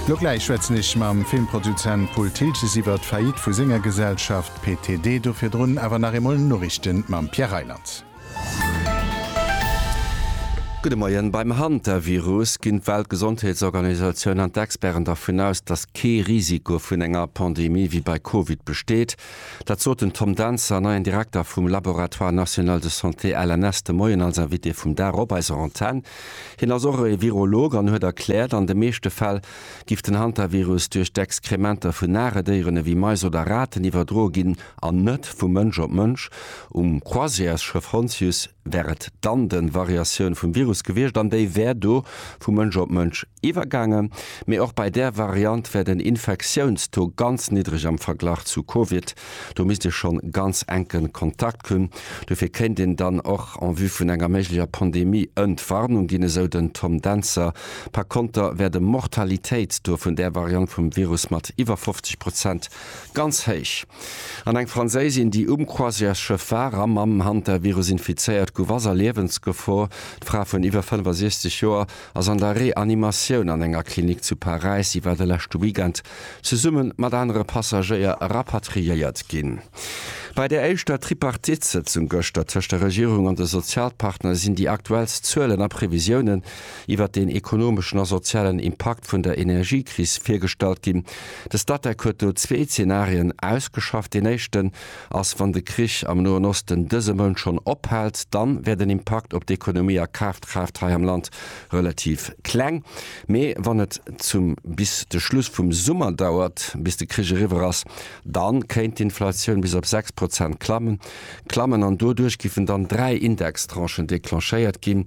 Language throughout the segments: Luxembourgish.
Lo gläich schwätzen ech mam Filmproduzent Paul Thiltges iwwert d'Faillite vu senger Gesellschaft PTD. Do virdrun awer nach eemol Noriichten mam Pierre Reyland. Gudde Moien. Beim Hantavirus ginn d'Weltgesondheetsorganisatioun an d'Experten dervun aus, datt kee Risiko vun enger Pandemie wéi bei Covid besteet. Dat sot den Tom Dancer, neien Direkter vum Laboratoire National de Santé, LNS, de Moien als Invité vum Dag op eiser Antenn. Hien ass och e Virolog an huet erkläert, an de meeschte Fäll giff den Hantavirus duerch d'Exkrementer vun nare Déieren ewéi Mais oder Raten iwwerdroe ginn an net vu Mënsch op Mënsch. Um Croisièresschëff Hontius Wär et dann de Variatioun vum Virus gewiescht an déi wär do vu Mënsch op Mënsch iwwergaangen. Mee och bei där Variant wär den Infektiounstaux ganz niddreg am Verglach zu Covid. Do misst ee schonn ganz enke Kontakt hunn. Dofir kéint een dann och en vue vun enger méiglecher Pandemie Entwarnung ginn, esou den Tom Dentzer. Par konter wär de Mortalitéitstaux vun där Variant vum Virus mat iwwer 50 Prozent Ganz héich. An eng Franséisin, déi um Croisièresschëff war a mam Hantavirus infizéiert gouf, ass a Liewensgefor. D'Fra vun iwwer 65 Joer ass an der Reanimatioun an enger Klinik zu Paräis. Si war de leschte Weekend zesumme mat anere Passagéier rapatriéiert ginn. Bei der éischter Tripartite-Sëtzung gëschter tëscht der Regierung an de Sozialpartner sinn déi aktuellst Zuelen a Previsiounen. iwwert den ekonomeschen a sozialen Impakt vun der Energiekris virgestallt ginn. De Statec huet do zwee Zenarien ausgeschafft. Deen éischten ass, wann de Krich am Noen Osten dëse Mount schonn ophält, dann wär den Impakt op d'Ekonomie a Kafkraaft hei am Land relativ kleng. Mee wann et zum bis de Schluss vum Summer dauert, bis de Krich eriwwer ass, dann kéint d'Inflatioun bis op 6 Prozent klammen klammen an doduerch giffen dann dräi Indextranchen declenchéiert ginn.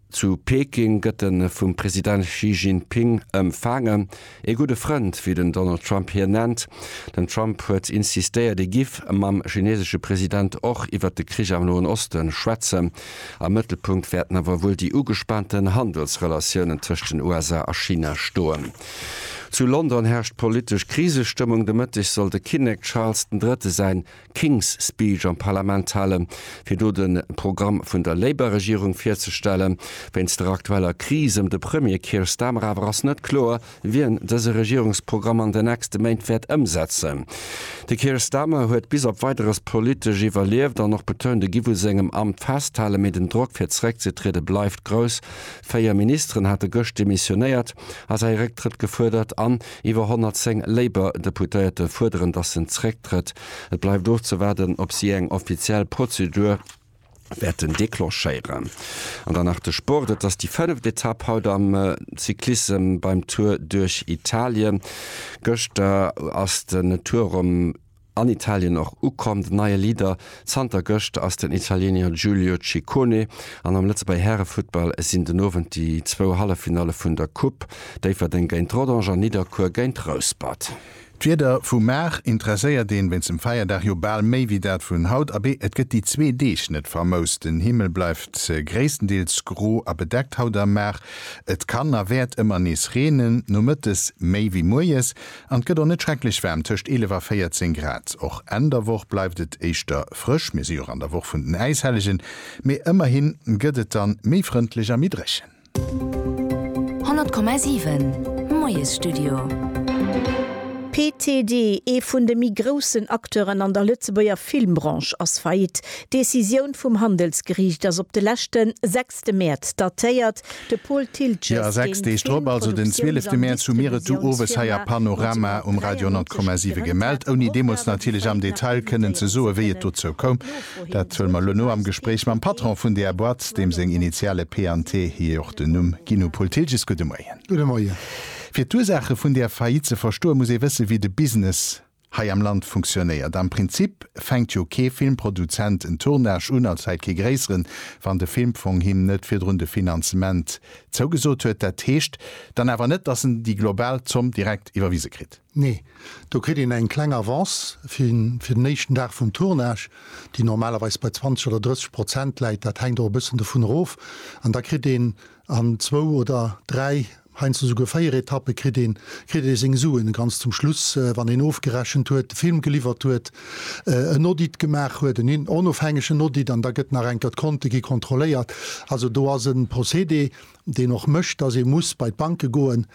Zu Peking gëtt en vum President Xi Jinping ëmfaangen. Ee gudde Frënd, wéi den Donald Trump hien nennt. Den Trump huet insistéiert, e giff mam chinesesche President och iwwert de Krich am Noen Oste schwätzen. Am Mëttelpunkt wäerten awer wuel déi ugespaanten Handelsrelatiounen tëscht den USA a China stoen. Zu London herrscht politesch Krisestëmmung. De Mëtteg soll de Kinnek Charles den Drëtte säin King's Speech am Parlament halen, fir do de Programm vun der Labour-Regierung virzestellen. Wéinst der aktueller Kris ëm de Premier Keir Starmer awer ass net kloer, wien dëse Regierungsprogramm an den nächste Méint wäert ëmsetzen. De Keir Starmer huet bis op Weideres politesch iwwerlieft an och betount, e giff u sengem Amt festhalen, mee den Drock fir zeréckzetriede bleift grouss. Véier Ministeren hate gëscht demissionéiert a säi Récktrëtt gefuerdert an Iwwer 110 Labour-Deputéierte fuerderen, datt en zrécktrëtt. Et bleift ofzewaarden, ob si eng offiziell Prozedur wäerten declenchéieren. An dann nach de Sport. Et ass déi fënneft Etapp haut am Cyclissem beim Tour duerch Italien. Gëschter ass den Tour rëm. An Italien och ukomm, den neie Leader zanter gëscht ass den Italiener Giulio Ciccone. An am Lëtzebuerger Härefuttball sinn den Owend déi zwou Halleffinalle vun der Coupe, Déifferdeng géint Rodange an Nidderkuer géint Rouspert. D'Wieder vu mar interesséiert een wéinst dem Feierdag jo bal méi wéi dat vun haut. Abee, et gëtt déi zwee Deeg net famous, den Himmel bleift gréisstendeels gro a bedeckt haut a mar. Et kann a wäert ëmmer nees reenen, nomëttes méi wéi moies. An et gëtt och net schrecklech waarm, tëscht 11 a 14 Grad. Och Enn der Woch bleift et éischter frësch. Mir si jo och an der Woch vun den Äishellegen, mee ëmmerhi gëtt et dann méi frëndlech a méi dréchen. 100,7 Moiesstudio. PTD, ee vun de méi groussen Acteuren an der Lëtzebuerger Filmbranche ass faillite. D'Decisioun vum Handelsgeriicht ass op de leschte 6 De Mäerz datéiert de Paul Thiltges den Film. Jo, 6 Deeg drop, also den 12 de Mäerz, hu mir et du owes hei a Panorama um Radio 100,7 gemellt, ouni deemools natierlech am Detail kënnen ze soen, wéi et dozou koum. Dat huele mer elo no am Gespréich mam Patron vun där Boîte, deem seng Initiale P an T hir och den Numm ginn hu. Paul Thiltges, gudde Moien. Gudde Moien. Fir d'Ursaache vun där Faillite ze verstoen, muss ee wëssen, wéi de Business Hei am Land funktionéiert am Prinzip, fänkt jo kee Filmproduzent en Tournage un, als häit kee gréisseren, wann de Filmfong him net virdrun de Finanzement zougesot huet. Dat heescht dann awer net, dass en déi global Zomm direkt iwwerwise kritt. Nee, do kritt een eng kleng Avance fir den éischten Dag vum Tournage, déi normalerweis bei 20 oder 30 Prozent läit, dat hänkt och e bëssen dovun erof, an da kritt een an zwou oder dräi Heiansdo esouguer 4 Etappe kritt een, kritt ee seng Suen ganz zum Schluss, wann een ofgerechent huet, de Film geliwwert huet, en Audit gemaach huet, en onofhängegen Audit, an da gëtt nach eng Kéier d'Konte gi kontrolléiert. Also do ass e Procédé, deen och mécht, dass ee muss bei d'Banke goen.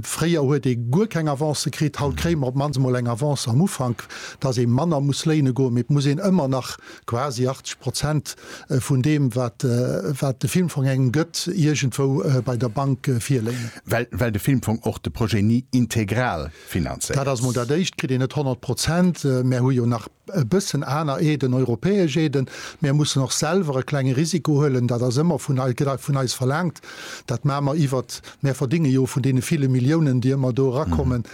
Fréier huet ee guer keng Avancë kritt, haut kréie mer op d'mannst emol eng Avance am Ufank, dass ee manner muss léine goen, mee et muss een ëmmer nach Quasi 80 Prozent vun deem, wat de Filmfong engem gëtt, iergendwou bei der Bank virléien. Well de Filmfong och de Projet ni integral finanzéiert. Dat ass emol dat Éischt, kritt een net 100 Prozent. Mär hu jo nach e bëssen aner Aiden, europäesch Aiden. Mär mussen och selwer e klenge Risiko huelen. Dat ass ëmmer vun eis verlaangt. Dat maache mer iwwert Mär verdinge jo vun deene ville Milliounen, déi ëmmer do erakommen,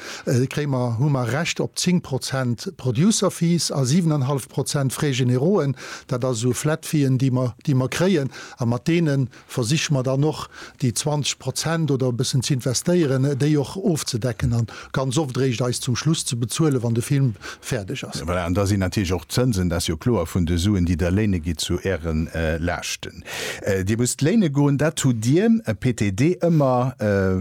kréie mer, hu mer Recht op 10 Prozent Producer Fees a 7 an hallef Prozent Frais généraux'en. Dat ass esou Flat Fee'en, déi mer, déi mer kréien. A mat deene versiche mer dann och déi 20 Prozent oder e bëssen ze investéieren, déi och ofzedecken a ganz oft eréischt eis zum Schluss ze bezuelen, wann de Film fäerdeg ass. Voilà, an da sinn natierlech och d'Zënsen, dat ass jo kloer, vun de Suen, déi Der léine gitt, zu Äre Laaschten. Dir musst léine goen, dat hutt Dir, PTD, ëmmer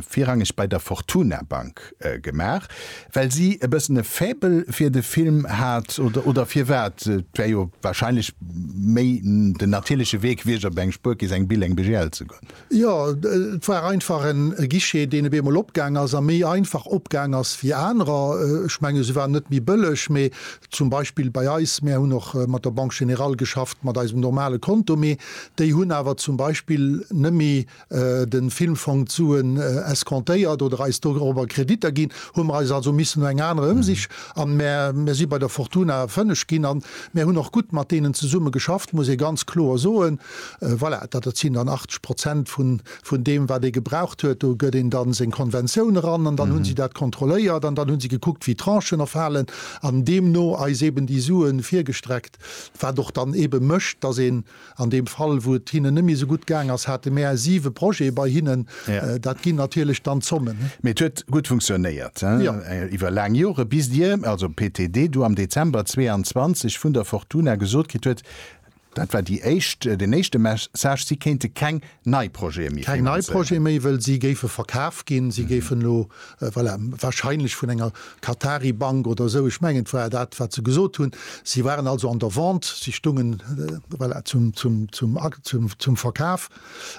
virrangeg bei der Fortuna Bank gemaach, well si e bëssen e Faible fir de Film hat, oder firwat? Et wär jo warscheinlech méi den natierleche Wee gewiescht, op eng Spuerkeess, eng Bil, eng BGL ze goen. Jo, et war einfach en Guichet, deen op eemol opgaang ass a méi einfach opgaang ass wéi anerer. Ech mengen, se waren net méi bëlleg, mee Zum Beispill bei eis, mär hunn och mat der Banque Générale geschafft, mat eisem normale Konto, mee déi hunn awer zum Beispill nëmme de Filmfong d'Suen escomptéiert oder eis dorobber Kreditter ginn, hu mer eis also missen no enger anerer Ëmsich an mär si bei der Fortuna fënneg ginn. An mär hunn och gutt mat deenen zesumme geschafft, muss ee ganz kloer soen. Voilà, dat sinn dann 80 Prozent vun vun deem wat ee gebraucht huet, do gëtt een dann seng Konventioun eran an dann hunn si dat kontrolléiert an dann hunn si gekuckt wéi Tranchen erfalen an deemno eis eben déi Suen virgestreckt, wat och dann eben mécht, dass een an deem Fall wou et hinnen net méi esou gutt gaang ass, hate mär siwe Projete bei hinnen, dat ginn natierlech dann d'Zommen. Mee et huet gutt funktionéiert iwwer laang Jore bis Dir, also PTD, du am Dezember 22 vun der Fortuna gesot kritt huet, Dat war déi éischt, den éischte Message, si kéinte keng nei Projete méi finanzéieren. Keng nei Projete méi, wëll si géife verkaf ginn. Si géifen elo, voilà, wahrscheinlech vun enger Qatari Bank oder esou, ech mengen et war dat wat se gesot hunn. Si waren also an der Vente, si stungen, voilà, zum, zum, zum, zum, zum Verkaf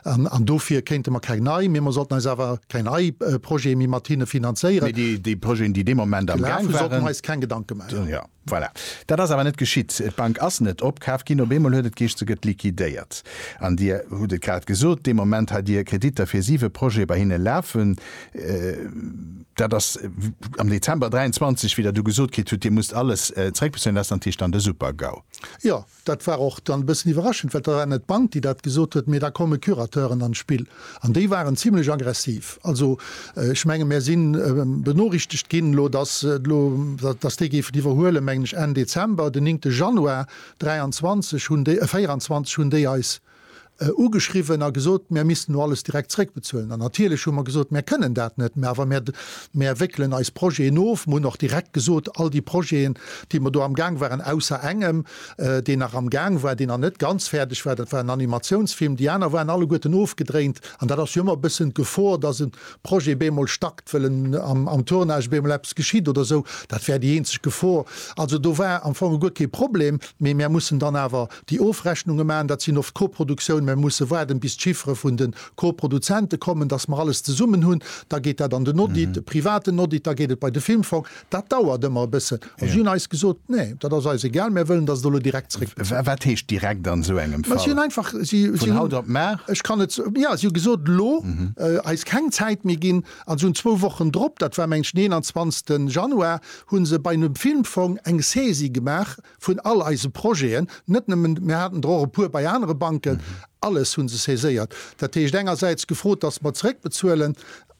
an dofir kéinte mer keng nei, mee mer sollten eis awer keng nei Projete méi mat hinne finanzéieren. Mee déi, déi Projeten, déi dee Moment am Gaang waren. Gelaf hu, sollten mer eis keng Gedanke maachen. Voilà. Dat ass awer net geschitt. D'Bank ass net opkaaft ginn. Op eemol huet et geescht, se gëtt liquidéiert. An Dir hutt et grad gesot, dee Moment hat Dir Kreditter fir siwe Projete bei hinne lafen. Dat ass am Dezember 23 wieder do gesot kritt hutt, Dir musst alles zréckbezuelen. Dat ass dann d'Tischland, e Super-GAU. Jo, Dat war och dann e bëssen iwwerraschend, well et war net d'Bank, déi dat gesot huet, mee da komme Curateuren an d'Spill. An déi waren zimlech aggressiv. Also ech menge mär si benorichtegt ginn elo, datt elo, datt déi géifen iwwerhuelen, mengen ech Enn Dezember, den 9 Januar 23 hunn déi, 24 hunn déi eis, ugeschriwwen a gesot, mär missten elo alles direkt zréckbezuelen. An natierlech hu mer gesot, mär kënnen dat net, mä awer mär, mär wéckelen eis Projeten of. Mer hunn och direkt gesot, all déi Projeten, déi mer do amgaang waren, ausser engem, deen nach amgaang war, deen nach net ganz fäerdeg war, dat war en Animatiounsfilm, déi aner waren alleguerten ofgedréint. An dat ass jo ëmmer e bëssen d'Gefor, dass e Projet bemol stackt, wëll en am, am Tournage bemol eppes geschitt oder esou. Dat wär déi eenzeg Gefor. Also do war am Fong guer kee Problem, mee mär mussen dann awer Déi Ofrechnunge maachen, dat sinn oft Koproduktiounen, mä mir musse waarden, bis d'Chiffere vun de Koproduzente kommen, dass mer alles zesummen hunn. Da geet dat an den Audit, e privaten Audit, da geet et bei de Filmfong. Dat dauert ëmmer e bëssen. A si hunn eis gesot, Nee, dat ass eis egal, mir wëllen, dass et elo direkt zeréckgeet. Wat heescht direkt an esou engem Fall? Vun haut op mar? Ech kann et, jo, si hu gesot, elo eis keng Zäit méi ginn. A si hunn zwou Wochen drop, dat war meng ech den 21 Januar, hu se bei de Filmfong eng Saisie gemaach, Vun all eise Projeten, net nëmmen, mir haten der och e puer bei anere Banken, alles hu se saiséiert. Dat heescht engersäits gefrot, dass mer zeréckbezuelen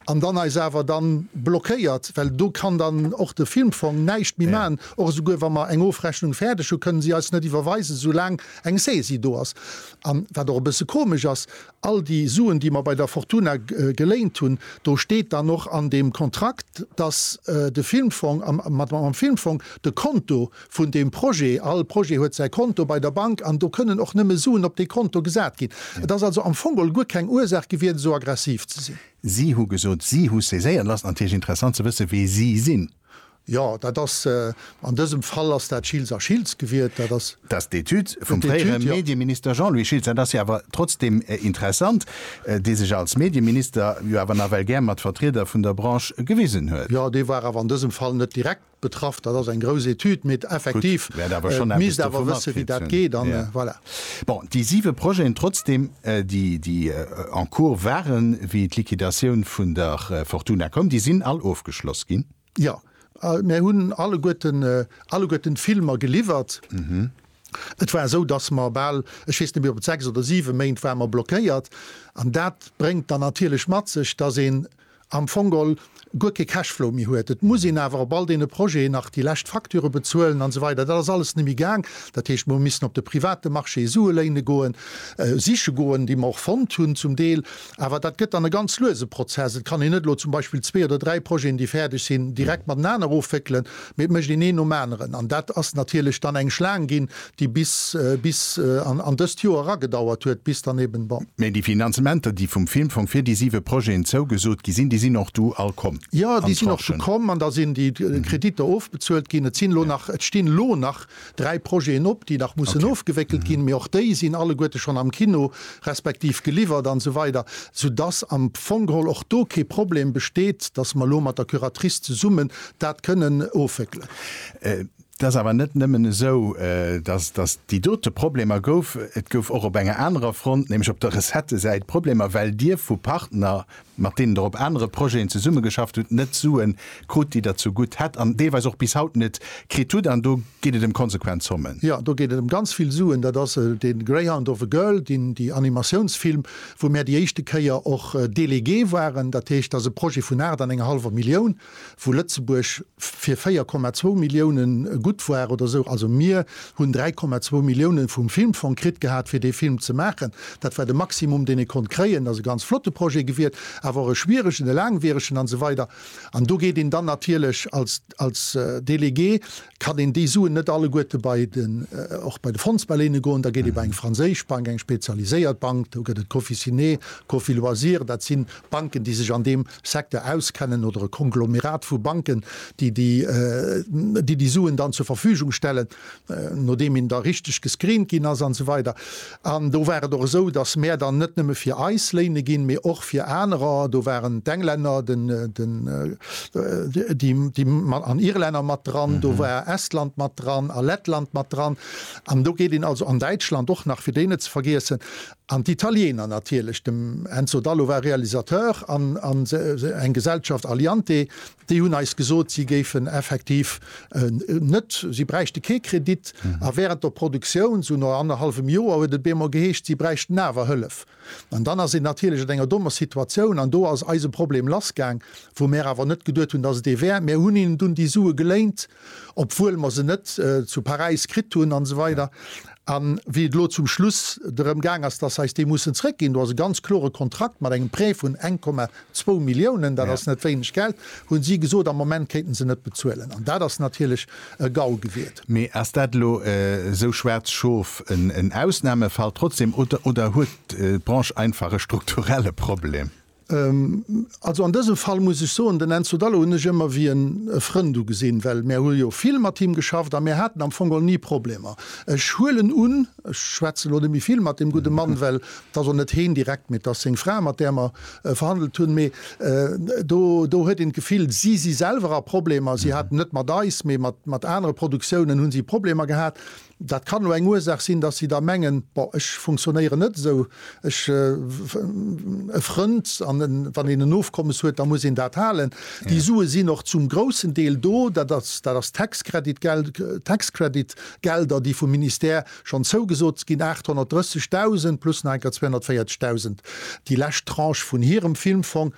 an dann eis awer da blockéiert, well do kann dann och de Filmfong näischt méi maachen. Och esouguer wa mer eng Ofrechnung fäerdeg hunn, kënnen si eis net iwwerweisen, soulaang eng Saisie do ass. An wat och e bësse komesch ass, All déi Suen, déi mer bei der Fortuna geléint hunn, do steet dann och an deem Kontrakt, dass de Filmfong, mat mam Filmfong, de Konto vun deem Projet, all Projet huet säi Konto bei der Bank an do kënnen och nëmme Suen op dee Konto gesat ginn. Et ass also am Fong guer keng Ursaach gewiert, esou aggressiv ze sinn. Si hu gesot, si hu saiséiert lass. Natierlech interessant ze wëssen, wee si sinn. Jo, dat ass, an dësem Fall ass dat Schiltz a Schiltz gewiert. Dat ass. Dass d'Etüd vum fréiere Medieminister Jean-Louis Schiltz, dat ass jo awer trotzdeem interessant, dee sech als Medieminister jo awer nawell gär mat Vertrieder vun der Branche gewisen huet. Jo, dee war awer an dësem Fall net direkt betraff. Dat ass eng grouss Etüd, mee effektiv, et misst awer wësse wéi dat geet an voilà. Bon, déi siwe Projeten trotzdeem, déi, déi en cours waren, wéi d'Liquidatioun vun der Fortuna koum, déi sinn all ofgeschloss ginn? Jo, mär hunn alleguerten, alleguerten d'Filmer geliwwert. Et war esou, dass mer bal, ech weess net méi, ob et sechs oder siwe Méint war mer blockéiert. An dat bréngt dann natierlech mat sech, dass een am Fongol guer kee Cashflow méi huet. Et muss een awer op all deene Projeten nach déi lescht Facture bezuelen an esou weider. Dat ass alles net méi gaang. Dat heescht, mer hu missen op de private Marché Sue léine goen, siche goen, déi mer och fonnt hunn zum Deel. Awer dat gëtt dann e ganz luese Prozess. Et kann een net elo zum Beispill zwee oder dräi Projeten, déi fäerdeg sinn, direkt matenaner ofwéckelen, mee et mécht een een nom aneren. An dat ass natierlech dann eng Schlaang ginn, déi bis bis an dëst Joer eragedauert huet, bis dann eben, bon. Mee déi Finanzementer, déi vum Filmfong fir déi siwe Projeten zougesot gi sinn, déi sinn och du all komm? Jo, déi sinn och du komm. An da sinn déi Kreditter ofbezuelt ginn. Et sinn elo nach, et stinn elo nach dräi Projeten op, déi nach mussen ofgewéckelt ginn, mee och déi sinn alleguerte schonn am Kino, respektiv geliwwert an esou weider, soudass am Fong geholl och do kee Problem besteet, dass mer elo mat der Curatrice zesummen dat kënnen ofwéckelen. Et ass awer net nëmmen esou, dass et déi dote Problemer gouf. Et gouf och op enger anerer Front, nämlech op der Recettesäit, Problemer, well Dir vu Partner mat deenen Der op anere Projeten zesummegeschafft hutt, net Sue krut, déi Der zugutt hätt an deelweis och bis haut net kritt hutt. An do geet et ëm konsequent Zommen. Jo, do geet et ëm ganz vill Suen. Dat ass de Greyhound of a Girl, déi Animatiounsfilm, wou mär déi éischte Kéier och Délégué waren. Dat heescht, dat ass e Projet vun aacht an enger hallwer Millioun. wou Lëtzebuerg fir 4,2 Milliounen gutt war oder esou. Also mir hunn 3,2 Milliounen vum Filmfong kritt gehat fir dee Film ze maachen. Dat war de Maximum deen ee konnt kréien. Ass e ganz flotte Projet gewiert, awer och e schwieregen, e laangwieregen an esou weider. An do geet een dann natierlech als Délégué Kann een déi Suen net alleguerte bei den, och bei de Fondsbaléine goen, da geet ee bei eng franséisch Bank, eng spezialiséiert Bank, do gëtt et d'Cofissiné, d'Cofiloisirs, dat si Banken, déi sech an deem Secteur auskennen, oder e Konglomerat vu Banken, déi déi Suen dann zur Verfügung stellen, nodeem een da richteg gescreent ginn ass, an esou weider. An do war et och esou, datt mär dann net nëmme fir eis Léine ginn, mee och fir anerer. Do waren d'Englänner, den, den, déi, déi mat, an Irlänner mat dran, do war Estland mat dran a Lettland mat dran. An do geet een also, an Däitschland och nach, fir déi net ze vergiessen, an d'Italiener natierlech. Dem Enzo Dallo war Realisateur an, an eng Gesellschaft, Aliante, Déi hunn eis gesot, si géifen effektiv net, si bräichte kee Kredit. A während der Produktioun, esou no annerhallwem Joer, huet et op eemol geheescht, si bräichten awer Hëllef. An dann ass een natierlech an enger dommer Situatioun. An do ass eise Problem lassgaang, wou mär awer net geduet hunn, dass et ee wär. Mär hunn hinnen dunn déi Sue geléint. obwuel mer se net zu Paräis kritt hunn an esou weider. A wéi et elo zum Schluss drëm gaang ass, dass eis déi mussen zrëckginn, do ass e ganz klore Kontrakt mat engem Prêt vun 1,2 Milliounen, dat ass net wéineg Geld, hu si gesot, am Moment kéinten se net bezuelen. An dat ass natierlech e GAU gewiert. Mee ass dat elo esou schwaarz Schof, en Ausnahmefall trotzdem, oder huet d'Branche einfach e strukturelle Problem? Also an dësem Fall muss ech soen, den Enzo Dallo hunn ech ëmmer wéi en e Frënd ugesinn, well mär hu jo vill mat him geschafft a mär haten am Fong geholl ni Problemer. Ech huelen un, ech schwätze lo net méi vill mat deem gudde Mann, well et ass och net heen direkt, mee et ass seng Fra, mat där mer verhandelt hunn, mee do do huet een d'Gefill, si si selwer a Problemer, si haten net mat eis, mee mat anere Produktiounen hu si Problemer gehat. Dat kann elo eng Ursaach sinn, dass si da mengen, Bon, ech funktionéieren net esou, ech, e Frënd, an en, wann een en Ofkommes huet, da muss een dat halen. Déi Sue sinn och zum groussen Deel do. Dat ass, dat ass Tax Credit Geld, Tax Credit Gelder, déi vum Ministère schonn zougesot ginn, 830.000 plus nach enker 240.000, déi lescht Tranche vun hirem Filmfong.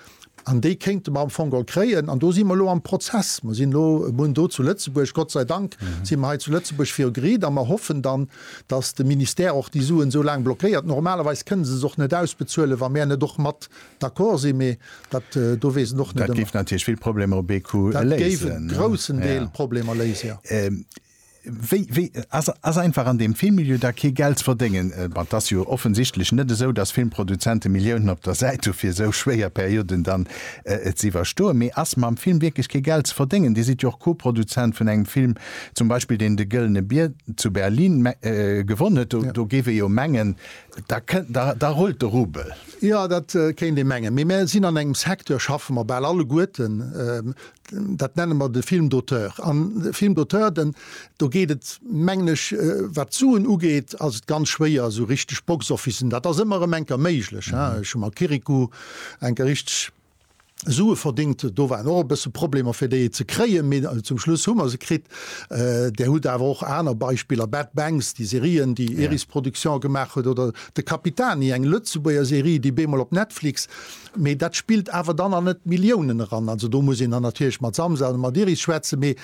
An déi kéinte mer am Fong geholl kréien. An do si mer elo am Prozess. Mer sinn elo munn do zu Lëtzebuerg. Gott sei Dank si mer hei zu Lëtzebuerg viru Gericht. A mer hoffen dann, datt de Ministère och déi Suen esou laang blockéiert. Normalerweis kënne se se och net ausbezuelen, wa mär net och mat d'accord sinn. Mee dat do weess en och net ëmmer. Dat géif natierlech vill Problemer op ee Coup léisen. Dat géif e groussen Deel Problemer léisen, jo. Wéi, wéi ass, ass einfach an deem Filmmilieu da kee Geld ze verdéngen? Bon, 't ass jo offensichtlech net esou, dass Filmproduzente Milliounen op der Säit hu fir esou schwéier Perioden dann z'iwwerstoen. Mee ass mam Film wierklech kee Geld ze verdéngen? Dir sidd jo och Co-Produzent vun engem Film zum Beispill, deen de Gëllene Bier zu Berlin gewonn huet. Do, do géif ee jo mengen, da kënnt, da, da rullt de Rubel. Jo, dat kéint ee mengen. Mee mer sinn an engem Secteur, schaffe mer bal alleguerten, Dat nenne mer de Film d'auteur. An de Film d'auteur, den, do geet et, mengen ech, wat d'Suen ugeet, ass et ganz schwéier, esou richteg Boxofficen, dat ass ëmmer erëm eng Kéier méiglech, hein, ech hu mam Kirikou eng Kéier richteg Sue verdéngt, do waren och e bësse Problemer, fir déi ze kréien, mee zum Schluss hu mer se kritt. Där hutt awer och aner Beispiller, Bad Banks, déi Serien, déi Iris Production gemaach huet, oder De Capitani, eng Lëtzebuerger Serie, déi bemol op Netflix Mee dat spillt awer dann an net d'Milliounen eran. Also do muss een dann natierlech mat Samsa oder mat Iris schwätzen, mee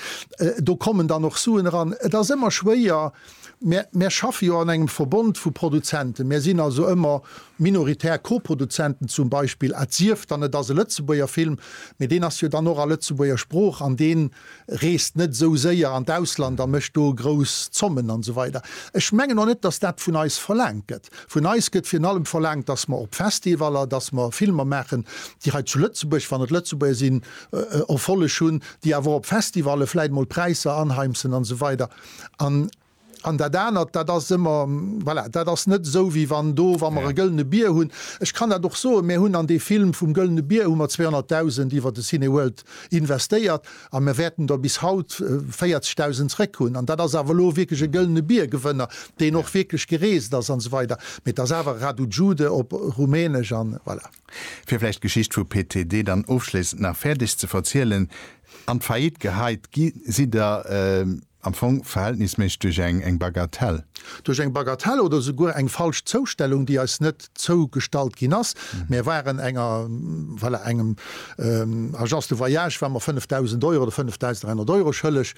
do kommen dann och Suen eran. Et ass ëmmer schwéier. Mär, mär schaffe jo an engem Verbond vu Produzenten. Mär sinn also ëmmer minoritär Koproduzenten zum Beispill, et sief dann et ass e Lëtzebuerger Film, mee deen ass jo dann och a Lëtzebuerger Sprooch an deen, reest net esou séier an d'Ausland a mécht do grouss Zommen an esou weider. Ech mengen och net, dass dat vun eis verlaangt gëtt. Vun eis gëtt virun allem verlaangt, dass mer op Festivaller, dass mer Filmer maachen, déi hei zu Lëtzebuerg, wann et Lëtzebuerger sinn, Erfolleg hunn, déi awer och op Festivalle vläit emol Präisser anheimsen an esou weider. An An dat anert, dat ass ëmmer, voilà, dat ass net esou, wéi wann do, wa mer e gëllene Bier hunn, ech kann dat och soen, mir hunn an dee Film vum gëllene Bier hu mer 200.000 iwwer de Cineworld investéiert a mir wäerten der bis haut 40.000 zrëck hunn. An dat ass awer elo wierklech e gëllene Bier-Gewënner, deen och wierklech gereest ass an esou weider. Mee et ass awer Radu Jude op Rumänesch an voilà. Fir vläicht d'Geschicht vu PTD dann ofschléissend nach fäerdeg ze verzielen, An d'Faillite geheit gi si der. Am Fong verhältnisméisseg duerch eng eng Bagatelle. Duerch eng Bagatelle oder souguer eng falsch Zoustellung, déi eis net zougestallt ginn ass. Mär waren enger, voilà, engem Agence de voyage war mer 5.000 Euro oder 5.300 Euro schëlleg.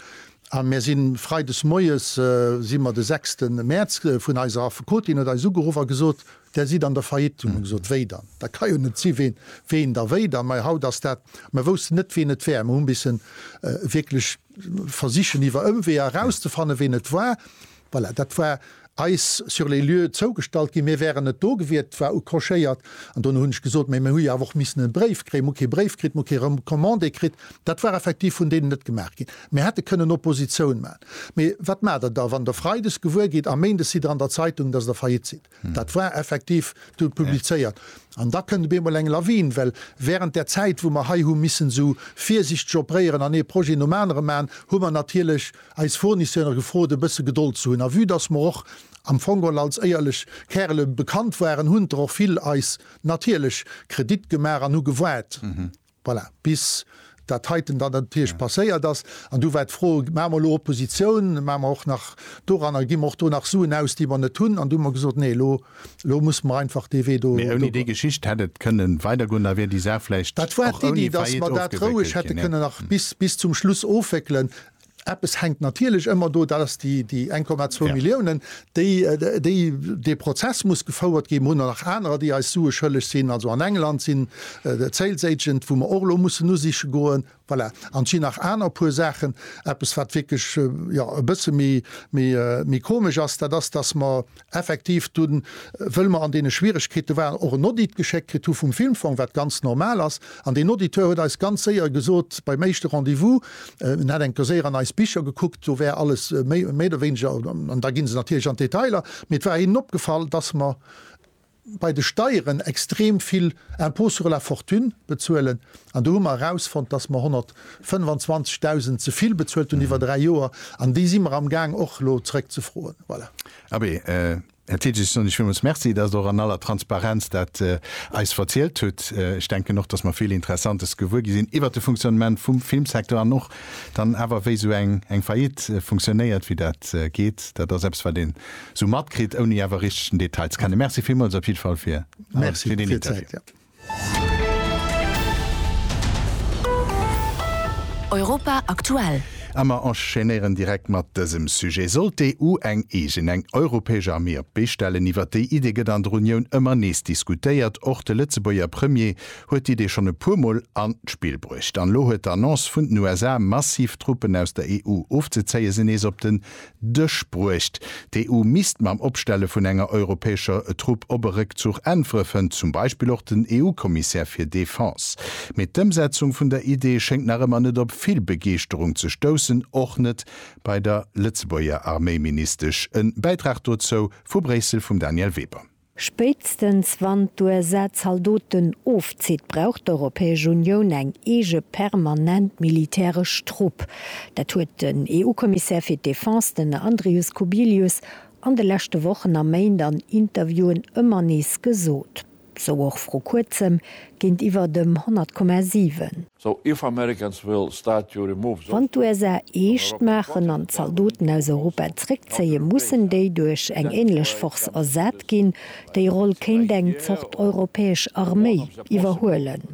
A mär si Freides moies, si mer de sechste Mäerz, vun eiser Affekotin huet eis ugeruff a gesot, Där sidd an der Faillite. Hu mer gesot, Wéi dann? Dat ka jo net si. Ween, ween da wéi dann? Mei haut ass dat, mer woussten net, ween et wär. Mer hu missen wierklech. Versichen iwwer Ëmweeër erauszefannen, ween et war. Voilà, dat war eis sur les lieux zougestallt ginn. Mir wären net do gewiert. Et war ucrochéiert. An dono hunn ech gesot, Mä mir hu jo awer och missen e Bréif kréien. Mir hu kee Bréif kritt, mir hu kee Recommandé kritt. Dat war effektiv vun deenen net gemaach ginn. Mir hätte kënnen Oppositioun maachen. Mee wat maacht Der da, wann Der freides gewuer gitt a méindes sidd Der an der Zeitung, dass Der faillite sidd? Dat war effektiv du publizéiert. An da kënnt op eemol eng Lawin, well während där Zäit, wou mer hei hu missen esou virsichteg opréieren an ee Projet nom anere maachen, hu mer natierlech eis Fournisseure gefrot, e bësse Gedold ze hunn. A vue dass mer och am Fong geholl als éierlech Kärele bekannt waren, hunn der och vill eis natierlech Kredit gemaach an hu gewaart, Voilà, bis dat heiten dann natierlech passéiert ass. An du war d'Fro, Maache mer elo Oppositioun, maache mer och nach doranner, gi mer och do nach Suen aus, déi mer net hunn? An du hu mer gesot, Nee, elo musse mer einfach dee Wee do. Mee ouni déi Geschicht hätt et kënne weidergoen, da wier déi Saach vläicht och ouni Faillite ofgewéckelt ginn. Dat war d'Iddi, datt mer dat roueg hätte kënnen nach bis zum Schluss ofwéckelen. Eppes hänkt natierlech ëmmer do, dat ass déi 1,2 Milliounen, déi dee Prozess muss gefouert ginn. Mir hunn nach anerer, déi eis Sue schëlleg sinn. Also an England sinn d'Sales Agent, wou mer och elo mussen usiche goen. Voilà. An et sinn nach aner puer Saachen. Eppes, wat wierklech e bësse méi komesch ass, dat ass, datt mer effektiv du wëll mer an deene Schwieregkeete waren, och en Audit geschéckt kritt hu vum Filmfong, wat ganz normal ass. An deen Auditeur huet eis ganz séier gesot beim éischte Rendez-vous, en hätt enker séier an eis Bicher gekuckt, do wär alles méi oder wéineger, an da gi se natierlech an d'Detailer, mee et war hinnen opgefall, dass mer, bei de Steieren extrem vill Impôt sur la fortune bezuelen an do hu mer erausfonnt, dass mer 125.000 ze vill bezuelt hunn iwwer dräi Joer an déi si mer amgaang och elo zrëckzefroen. Voilà. Abee, Här Titsch, ech soen Iech villmools Merci, dass Der och an aller Transparenz dat eis verzielt hutt. Ech denken och, dass mer vill Interessantes gewuer gi sinn iwwert de Fonctionnement vum Filmsecteur an och dann awer wéi esou eng Faillite funktionéiert, wéi dat geet. Dat ass eppes, wat een sou matkritt ouni awer richteg den Detail ze kennen. Merci villmools op jidde Fall fir alles, fir deen Interview. Europa aktuell. A mer enchaînéieren direkt mat dësem Sujet, Sollt d'EU eng eegen, eng europäesch Armee op d'Bee stellen? Iwwert déi Idee gëtt an der Unioun ëmmer nees diskutéiert. Och de Lëtzebuerger Premier huet d'Idee schonn e puer Mol an d'Spill bruecht. An elo huet d'Annonce vun den USA, massiv Truppen aus der EU ofzezéien, se nees op den Dësch bruecht. D'EU misst mam Opstelle vun enger europäescher Trupp op e Réckzuch äntweren, fënnt zum Beispill och den EU-Kommissär fir Defense. Mee d'Ëmsetzung vun der Idee schéngt nach ëmmer net op vill Begeeschterung ze stoussen, och net bei der Lëtzebuerger Arméiministesch. E Bäitrag dozou vu Bréissel vum Danièle Weber. Spéitstens wann d'USA Zaldoten ofzitt, brauch d'Europäesch Unioun eng eege permanent militäresch Trupp. Dat huet den EU-Kommissär fir d'Defense, den Andrius Kubilius, an de leschte Wochen a Méint an Interviewen ëmmer nees gesot. Sou och vru kuerzem géintiwwer dem 100,7. Wann d'USA eescht maachen an d'Zaldoten aus Europa zréckzéien, mussen déi duerch eng änlech Force ersat ginn. Déi Roll kéint eng Zort europäesch Arméi iwwerhuelen.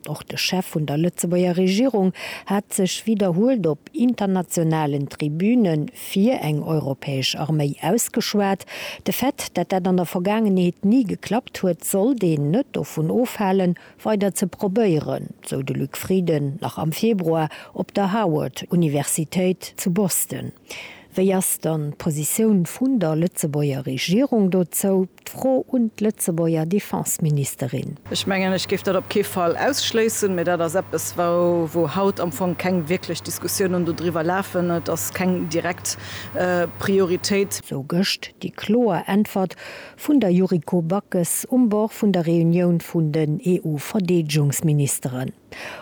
Och de Chef vun der Lëtzebuerger Regierung hat sech widderhuelt op internationalen Tribüne Fir eng europäesch Arméi ausgeschwat. De Fait, dat dat an der Vergaangenheet ni geklappt huet, sollt een net dovun ofhalen, weider ze probéieren, sou de Luc Frieden nach am Februar op der Howard Universitéit zu Boston. Wéi ass dann d'Positioun vun der Lëtzebuerger Regierung dozou? D'Fro un d'Lëtzebuerger Defenseministerin. Ech mengen, ech géif dat op kee Fall ausschléissen, mä dat ass eppes, wou haut am Fong keng wierklech Diskussiounen dodriwwer lafen. Et ass keng direkt Prioritéit. Sou gëscht déi kloer Äntwert vun der Yuriko Backes um Bord vun der Reunioun vun den EU-Verdeedegungsministeren.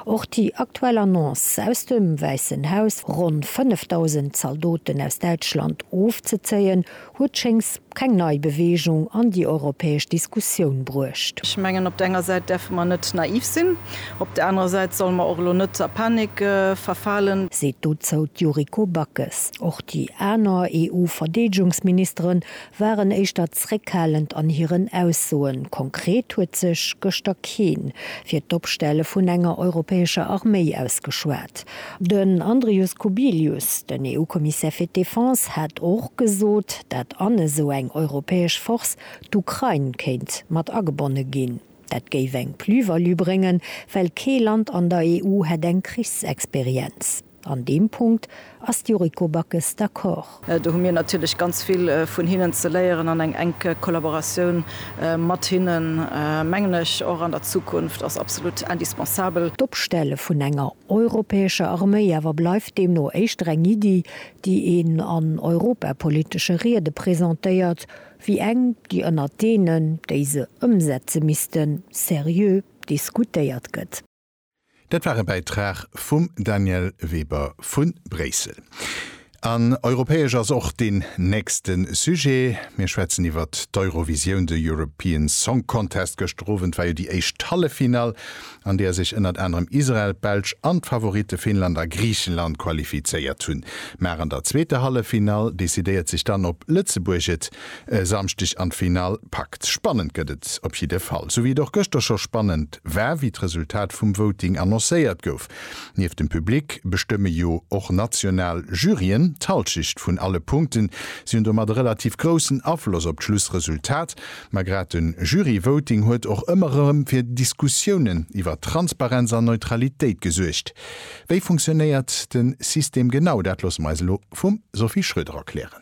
Och déi aktuell Annonce aus dem Wäissen Haus, ronn 5.000 Zaldoten aus Däitschland ofzezéien, huet schéngs keng nei Beweegung an déi europäesch Diskussioun bruecht. Ech mengen, op der enger Säit däerfe mer net naiv sinn, op der anerer Säit solle mer och elo net a Panik verfalen. Seet dozou d'Yuriko Backes. Och déi aner EU-Verdeedegungsministeren waren éischter zréckhalend an hiren Aussoen. Konkret huet sech gëschter keen fir d'Opstelle vun enger europäescher Arméi ausgeschwat. Den Andrius Kubilius, den EU-Kommissär fir d'Defense, hat och gesot, dat an esou eng europäesch Force d'Ukrain kéint mat agebonne ginn. Dat géif eng Plus-value bréngen, well kee Land an der EU hätt eng Krichsexperienz. An deem Punkt ass d'Yuriko Backes d'accord. Do hu mir natierlech ganz vill vun hinnen ze léieren an eng enk Kollaboratioun mat hinnen, mengen ech, och an der Zukunft ass absolut indispensabel. D'Opstelle vun enger europäescher Arméi awer bleift deemno éischter eng Iddi, déi een an europapolitesche Riede presentéiert, wéi eng, déi ënnert deenen, déi se ëmsetze missten, seriö diskutéiert gëtt. Dat war e Bäitrag vum Danièle Weber vu Bréissel. An europäesch ass och deen nächste Sujet. Mir schwätzen iwwer d'Eurovisioun, de European Song Contest. Gëschter Owend war jo déi éischt Halleffinall, an där sech ënnert anerem Israel, d'Belsch an d'Favoritte Finnland a Griichenland qualifizéiert hunn. Mar an der zweeter Halleffinall decidéiert sech dann, ob Lëtzebuerg et E Samschdeg an d'Finall packt. Spannend gëtt et op jidde Fall. Sou wéi et och gëschter scho spannend war, wéi d'Resultat vum Voting annoncéiert gouf. Nieft dem Public bestëmme jo och national Juryen d'Halschecht vun alle Punkten. Si hunn domat e relativ groussen Afloss op d'Schlussresultat. Ma grad de Jury-Voting huet och ëmmer erëm fir Diskussiounen iwwer Transparenz an Neutralitéit gesuergt. Wéi funktionéiert de System genau? Dat loosse mer eis elo vum Sophie Schröder erklären.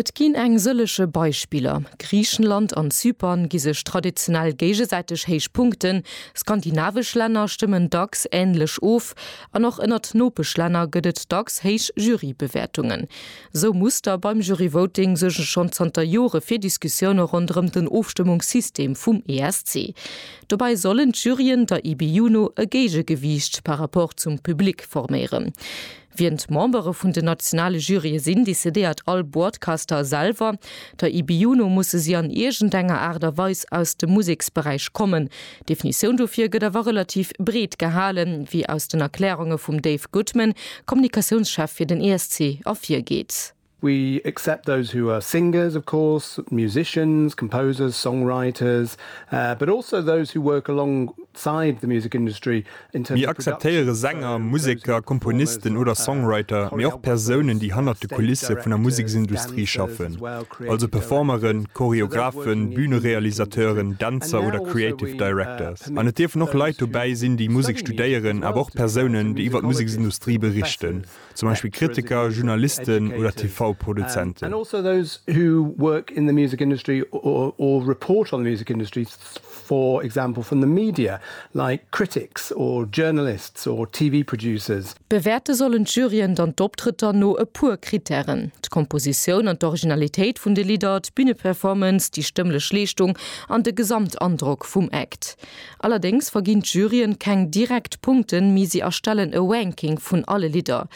Et ginn eng sëlleche Beispiller, Griichenland an Zypern gi sech traditionell géigesäiteg héich Punkten, skandinavesch Länner stëmmen dacks änlech of an och ënnert Nopeschlänner gëtt et dacks héich Jurybewäertungen. Sou Muster beim Juryvoting suerge schonn zanter Jore fir Diskussioune ronderëm den Ofstëmmungssystem vum ESC. Dobäi sollen d'Juryen der IBU no e Géigegewiicht par rapport zum Public forméieren. Wien d'Membere vun den nationale Jurye sinn, decidéiert all Boardcaster selwer. Der IBU no musse si an iergendenger Aart a Weis aus dem Museksberäich kommen. D'Definitioun dofir gëtt awer relativ breet gehalen, wéi aus den Erkläerunge vum Dave Goodman, Kommunikatiounschef fir den ESC, ervirgeet. We accept those who are singers, of course, musicians, composers, songwriters, but also those who work alongside the music industry in terms of production. Mir akzeptéiere Sänger, Museker, Komponisten oder Songwriter, mee och Persounen, déi hannert de Kulisse vun der Museksindustrie schaffen, also Performeren, Choreographen, Bühnerealisateuren, Dänzer oder Creative Directors. An et dierfen och Leit dobäi sinn, déi Musek studéieren, awer och Persounen, déi iwwer d'Museksindustrie berichten zum Beispill Kritiker, Journalisten oder TV-Produzenten. Bewäerte sollen d'Juryen dann d'Optrëtter no e puer Krittären, d'Kompositioun an d'Originalitéit vun de Lidder, d'Büneperformance, déi stëmmlech Leeschtung an de Gesamtandrock vum Act. Allerdéngs verginn d'Juryen keng direkt Punkten, mee si erstellen e Ranking vun alle Lidder.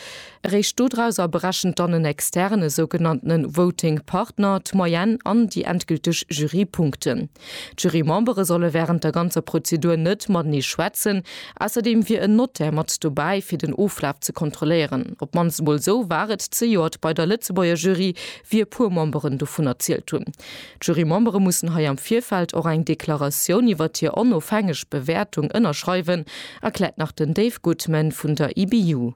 Eréischt dodrauser berechent dann en externen, e sougenannten Voting Partner, d'Moyenne an déi endgülteg Jurypunkten. D'Jurymembere solle wärend der ganzer Prozedur net matenee schwätzen. Ausserdeem wier en Notaire mat dobäi, fir den Oflaf ze kontrolléieren. Op d'mannst emol esou war et zejoert bei der Lëtzebuerger Jury, wéi e puer Memberen dovun erzielt hunn. D'Jurymembere mussen hei am Virfeld och eng Deklaratioun iwwert hir onofhängeg Bewäertung ënnerschreiwen, erkläert nach den Dave Goodman vun der IBU.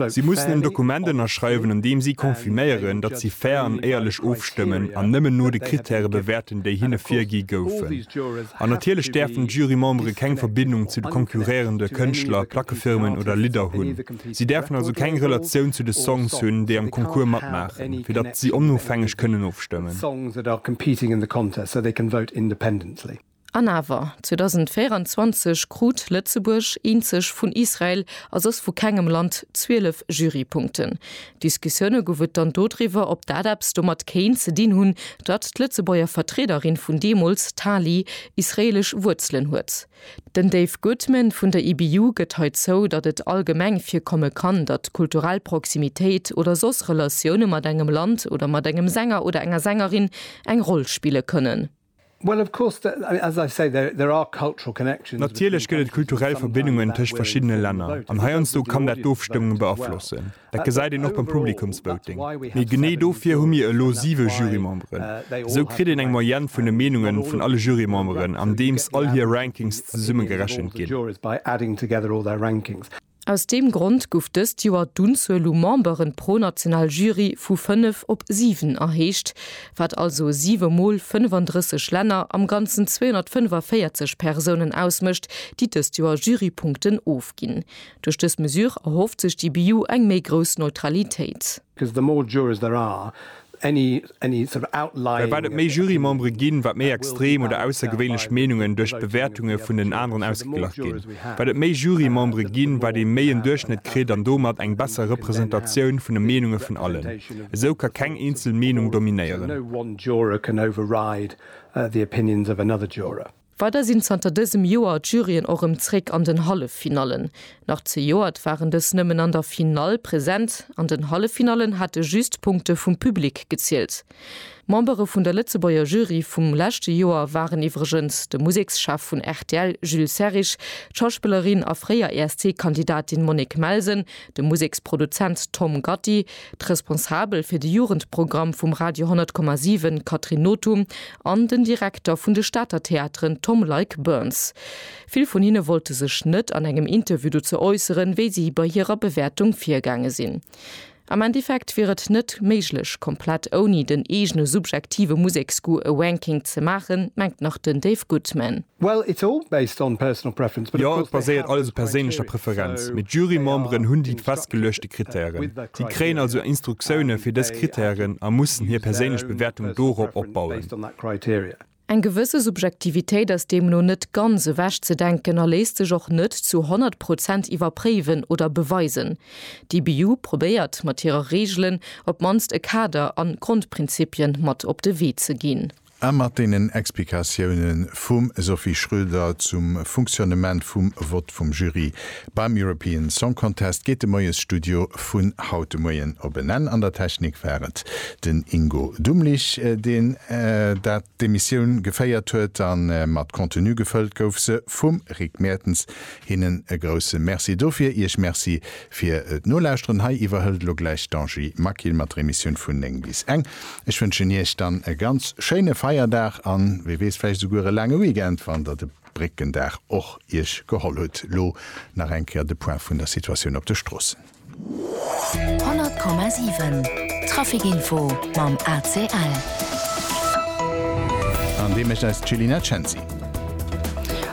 Si mussen en Dokument ënnerschreiwen, an deem si confirméieren, datt si fair an éierlech ofstëmmen an nëmmen no de Krittäre bewäerten, déi hinne virgi goufen. An natierlech däerfen d'Jurymembere keng Verbindung zu de konkurréierende Kënschtler, Plackefirmen oder Lidder hunn. Si däerfen also keng Relatioun zu de Songs hunn, déi am Concours matmaachen, fir datt si onofhängeg kënnen ofstëmmen. An awer, 2024 krut Lëtzebuerg, eenzeg vun Israel a soss vu kengem Land, 12 Jurypunkten. Diskussioune gouf et dann dodriwwer, ob dat eppes domat kéint ze dinn hunn, datt d'Lëtzebuerger Vertriederin vun deemools, d'Tali, israeelesch Wuerzelen huet. Den Dave Goodman vun der IBU gëtt hei zou, datt et allgemeng virkomme kann, datt kulturell Proximitéit oder soss Relatioune mat engem Land oder mat engem Sänger oder enger Sängerin eng Roll spille kënnen. Natierlech gëtt et kulturell Verbindungen tëscht verschiddene Länner, an heiansdo kann dat d'Ofstëmmung beaflossen. Dat gesäit een och beim Publikumsvoting. Mee genee dofir hu mir elo siwe Jurymemberen. Esou kritt een eng Moyenne vun de Meenunge vun alle Jurymemberen, andeems all hir Rankings zesumme gerechent ginn. Aus deem Grond gouf dëst Joer d'Unzuel u Memberen pro national Jury vu fënnef op siwen erhéicht, wat also siwe mol 35 Länner, am Ganzen 245 Persounen ausmécht, déi dëst Joer Jurypunkten ofginn. Duerch dës Mesure erhofft sech d'IBU eng méi grouss Neutralitéit. Well wat et méi Jurymembere ginn, wat méi extrem oder aussergewéinlech Meenungen duerch d'Bewäertunge vun den aneren ausgeglach ginn. Wat et méi Jurymembere ginn, wat ee méi en Duerchschnëtt kritt an domat eng besser Representatioun vun de Meenunge vun allen. Esou ka keng eenzel Meenung dominéieren. Weider sinn zanter dësem Joer d'Juryen och rëm zréck an den Halleffinallen. Nach zejoert waren dës nëmmen an der Finall present. An den Halleffinallen hate just d'Punkte vum Public gezielt. Membere vun der Lëtzebuerger Jury vum leschte Joer waren iwwregens de Musekschef vun rtl Jules Serrig, d'Schauspillerin a fréier ESC-Kandidatin Monique Melsen, de Museksproduzent Tom Gatti, d'Responsabel fir de Jugendprogramm vum Radio 10,7 Catherine Nothum an den Direkter vun de Stater Theateren Tom Leick Burns. Vill vun hinne wollte sech net an engem Interview dozou äusseren, wéi si bei hirer Bewäertung virgaange sinn. Am Endeffekt wier et net méiglech, komplett ouni den eegene subjektive Museksgoût e Ranking ze maachen, mengt nach den Dave Goodman. Well it's all based on personal preference. Jo, et baséiert alles op perséinlecher Preferenz, mee d'Jurymemberen hunn déi festgeluechte Krittären. Si kréien also Instruktioune fir dës Krittären a mussen hir perséinlech Bewäertung dorop opbauen. Eng gewësse Subjektivitéit ass deemno net ganz ewech ze denken a léisst sech och net zu 100 Prozent iwwerpréiwen oder beweisen. D'IBU probéiert mat hire Reegelen op d'mannst e Kader an Grondprinzipien mat op de Wee ze ginn. A mat deenen Explikatioune vum Sophie Schroeder zum Funktionnement vum Vott vum Jury beim European Song Contest geet de Moiesstudio vun haut de Moien op en Enn. An der Technik war et den Ingo Dumlich, deen dat d'Emissioun geféiert huet. A mat Contenu gefëllt gouf se vum Rick Mertens. Hinnen e grousse Merci dofir. Iech Merci Fir d'Nolauschteren hei iwwerhëlt elo gläich d'Angie Maquil mat der Emissioun vun 9 bis eng. Ech wënschen Iech dann e ganz schéine Feierdag an, wee weess, vläicht esouguer e laange Weekend, wann Der de Bréckendag och Iech geholl hutt. Elo nach eng Kéier de Point vun der Situatioun op de Stroossen. 100,7 Trafic Info mam ACL. An dee mécht eis d'Céline Censi.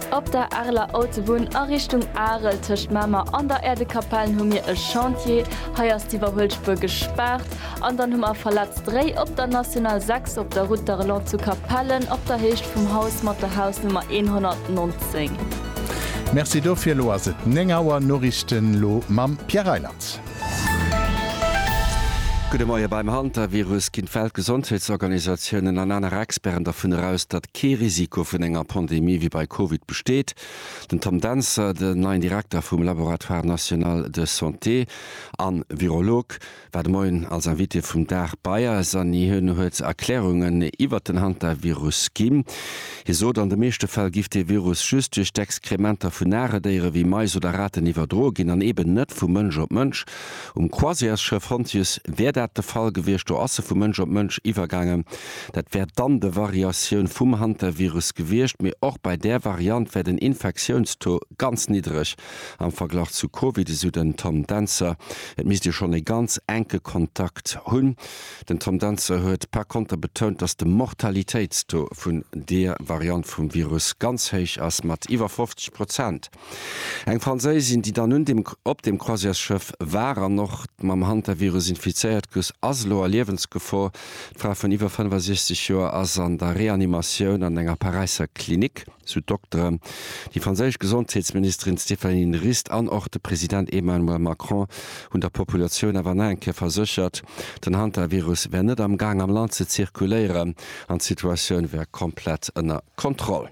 Op der Areler Autobunn a Richtung Arel tëscht Mamer an der Äerdekapellen hu mir e Chantier. Hei ass d'Iwwerhuelspuer gespaart. An dann hu mer verletzt Réi op der National 6 op der Route d'Arelon zu Capellen op der Héicht vum Haus mat der Hausnummer 119. Merci dofir. Elo ass et 9 Auer. Noriichten elo mam Pierre Reiland. Gudde Moie. Beim Hantavirus ginn d'Weltgesondheetsorganisatiounen an aner Experten dervun eraus, datt kee Risiko vun enger Pandemie wéi bei Covid besteet. Den Tom Dentzer, den neien Direkter vum Laboratoire national de santé a Virolog, war de Moien als Invité vum Dag bei eis an hien huet Erklärungen iwwert den Hantavirus ginn. Hie sot, an de meeschte Fäll giff dee Virus just duerch d'Exkrementer vun nare Déiere wéi Mais oder Raten iwwerdroe ginn an eben net vu Mënsch op Mënsch. Um Croisièresschëff Hontius wär dat de Fall gewiescht, do ass e vu Mënsch op Mënsch iwwergaangen. Dat wär dann de Variatioun vum Hantavirus gewiescht, mee och bei där Variant wär den Infektiounstaux ganz niddreg am Verglach zu Covid, esou den Tom Dentzer. Et misst ee schonn e ganz enke Kontakt hunn. Den Tom Dentzer huet par konter betount, datt de Mortalitéitstaux vun deer Variant vum Virus ganz héich ass, mat iwwer 50 Prozent. Eng Franséisin, déi dann un dem op dem Croisièresschëff war an och mam Hantavirus infizéiert gus, ass elo a Liewensgefor. D'Fra vun iwwer 65 Joer ass an der Reanimatioun an enger Paräisser Klinik, sou d'Dokteren. Déi franséisch Gesondheetsministerin Stéphanie Rist an och de President Emmanuel Macron hunn der Populatioun awer nach eng Kéier verséchert, den Hantavirus wär net am Gaang am Land ze zirkuléieren an d'Situatioun wär komplett ënner Kontroll.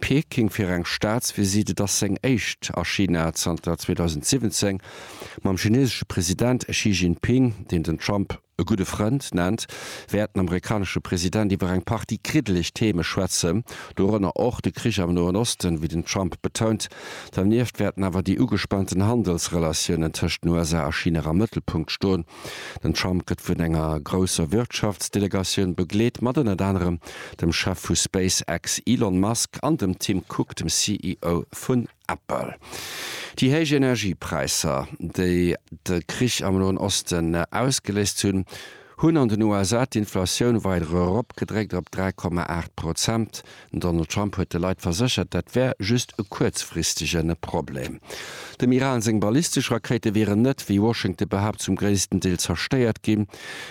Peking fir eng Staatsvisitt. Et ass seng éischt a China zanter 2017. Mam chinesesche President Xi Jinping, deen den Trump e gudde Frënd nennt, wäert den amerikanesche President iwwer eng Partie kriddeleg Theeme schwätzen, dorënner och de Krich am Noen Osten, wéi den Trump betount. Dernieft wäerten awer déi ugespaanten Handelsrelatiounen tëscht den USA a China am Mëttelpunkt stoen. Den Trump gëtt vun enger grousser Wirtschaftsdelegatioun begleet, mat ënnert anerem dem Chef vu SpaceX Elon Musk an dem Tim Cook, dem CEO vun Apple. Déi héich Energiepräisser, déi de Krich am Noen Osten ausgeléist hunn, hunn an den USA d'Inflatioun weider eropgedréckt op 3,8 Prozent. Den Donald Trump huet de Leit verséchert, dat wär just e kuerzfristegen Problem. Dem Iran seng ballistesch Rakéite wieren net, wéi Washington behaapt, zum gréissten Deel zerstéiert ginn,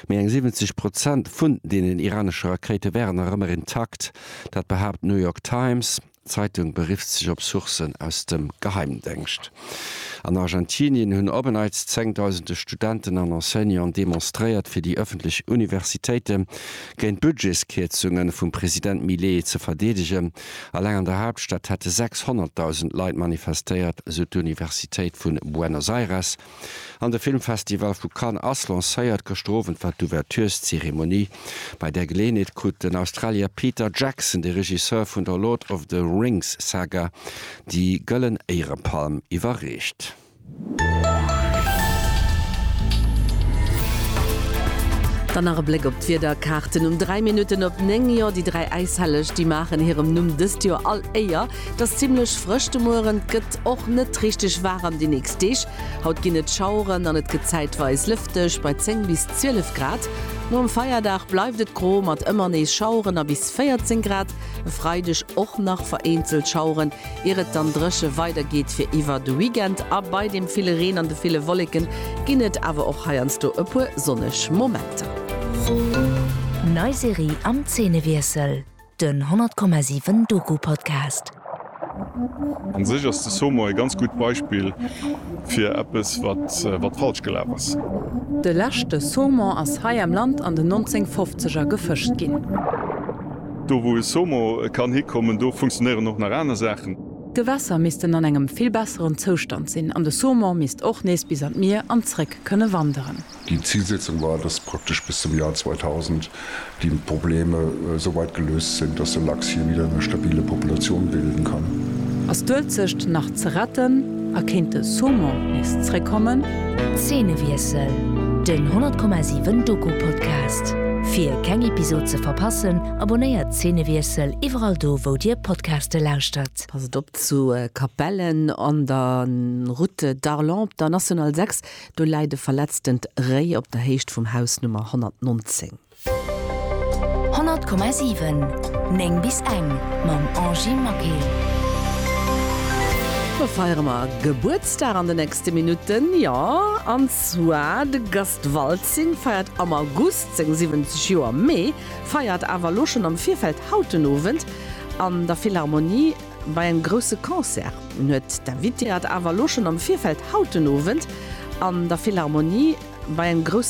mee eng 70 Prozent vun deenen iranesche Rakéite wären nach ëmmer intakt. Dat behaapt d'New York Times Zeitung, berifft sech op Sourcen aus dem Geheimdéngscht. An Argentinien hunn op en Neits zengdausende Studenten an Enseignanten demonstréiert, fir déi ëffentlech Universitéite géint d'Budgetskierzunge vum President Milei ze verdeedegen. Eleng an der Haaptstad hätte 600.000 Leit manifestéiert, sou d'Universitéit vu Buenos Aires. An de Filmfestival vu Cannes ass lancéiert. Gëschter Owend war d'Ouvertureszeremonie. Bei där Geleeënheet krut den Australier Peter Jackson, de Regisseur vun der Lord of the Rings Saga, déi Gëllen Éierepalm iwwerreecht. Dann nach e Bléck op d'Wiederkaarten um 3 Minutten op 9. Jo, déi dräi Äishelleg, déi maachen hirem Numm dëst Joer all Éier. Et ass zimmlech frësch de Mueren, et gëtt och net richteg waarem déi nächst Deeg. Haut ginn et Schaueren an et gëtt zäitweis lëfteg bei 10 bis 12 Grad. Nom Feierdag bleift et gro mat ëmmer nees Schaueren a bis 14 Grad. E Freideg och nach vereenzelt Schaueren, ier et dann dréche weider geet fir iwwer de Weekend. A bei dem ville Reen an de ville Wolleken ginn et awer och heiansdo e puer sonneg Momenter. Nei Serie am Zeenewiessel. Den 100,7 Doku Podcast. An sech ass de Somo e ganz gutt Beispill fir eppes wat wat falsch gelaf ass. De leschte Saumon ass hei am Land an den 1950er gefëscht ginn. Do wou e Somo kann hikommen, do funktionéieren och nach aner Saachen. D'Gewässer missten an engem vill besseren Zoustand sinn an de Saumon misst och nees bis an d'Mier an zréck kënne wanderen. Déi Zilsetzung war, dass praktesch bis zum Joer 2000 déi Probleme esou weit geléust sinn, dass de Lachs hir wieder eng stabile Populatioun bilden kann. Ass d'Uelzecht nach ze retten a kéint de Saumon nees zréckkommen? Zeenewiessel, den 100,7 Doku-Podcast. Fir keng Episod ze verpassen, abonnéiert Zeenewiessel iwwerall do wou dir Podcaste lauschtert. Passt op zu Capellen an der Route d'Arlon op der National 6. Do läit e verletzten Réi op der Héicht vum Haus Nummer 119. 100,7 9 bis eng mam Angy Maquet. Do feiere mer Gebuertsdag an de nächste Minutten, jo an zwar de Gast Waltzing feiert am August seng 70 Joer, mee feiert awer elo schonn am Virfeld haut den Owend an der Philharmonie, Bei engem grousse Concert huet d'Invitée et awer elo schonn am Virfeld haut den Owend an der Philharmonie bei engem grousse.